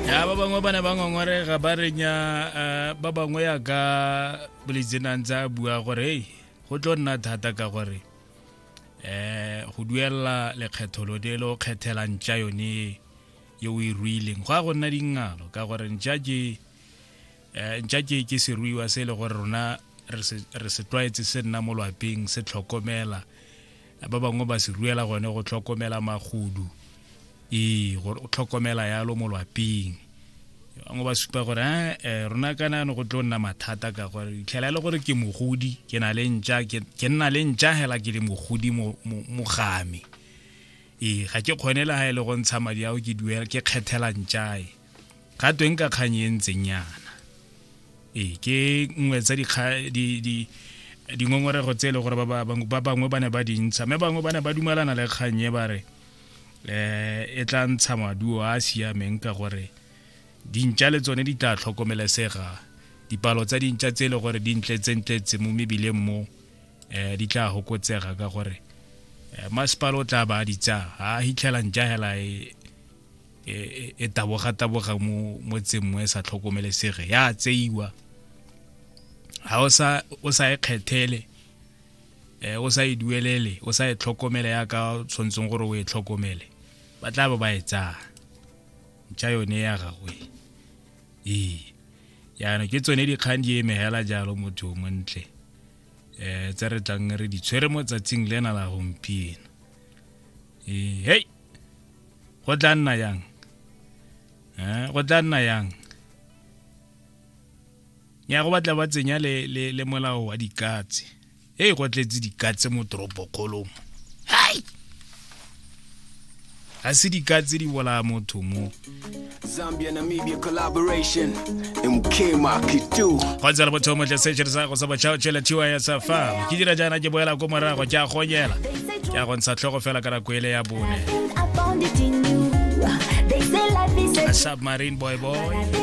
ya ba bangwe ba ne ba ngongorega ba renya eh, ba bangwe ya ka bolitsenang tsa bua gore hey go tlo nna thata ka gore um go duelela lekgetho lo le lo kgethela ntša yone ye o e ruileng go ya go nna dingalo ka gore ntša ke eh, ntša ke ke seruiwa se e le gore rona re se tlwaetse se nna mo lwapeng se tlhokomela ba bangwe ba se ruela gone go tlhokomela magodu ee go tlhokomela yalo mo lwapeng bangwe ba supa gore eh, eh rona kana no go tlo nna mathata ka gore itlhela e le gore ke mogodi ke na le ntša ke nna le ntša hela ke le mogodi mogame ee ga ke kgone le ga e le go ntsha madi ao ke duela ke kgethela ntšae ga tweng ka kgang e ntseng yana ee ke nngwe tsa dingongorego tse e le gore ba bangwe ba ne ba dintsha mme bangwe ba ne ba dumelana le kgang e ba re um e tla ntsha maduo a a siameng ka gore dintša le tsone di tla tlhokomelesega dipalo tsa dintša tse e le gore di ntletsentletse mo mebileng mo um di tla fokotsega ka gore um masepala o tla ba a ditsa ga a hitlhelang ja hela e e, e, e taboga-taboga mo mo tsemmo e sa tlhokomelesege ya tseiwa ga o sa o sa e kgethele eh o sa e duelele o sa e tlhokomele ya ka tshwantseng gore o e tlhokomele ba tla ba ba e tsaya ntšha yone ya gagwe ee yana ke tsone dikgang di emegela jalo motho o montle eh tse re tlang re di tshwere mo tsatsing lena la gompieno ee hei go tla nna yang eh go tla nna yang ya go batla ba tsenya le le le molao wa dikatse e go tletse dikatse mo toropo kgolong hai ga se dikatse di bolaya motho mo Zambia Namibia collaboration mkema kitu kwanza la motho motle se tšere sa go sa botšhao tšela thiwa ya safa ke dira jaana ke boela ko morago ke a gonyela ke a go ntsha tlhogo fela ka nako ele ya bone I found it in you. They say life is a submarine boy boy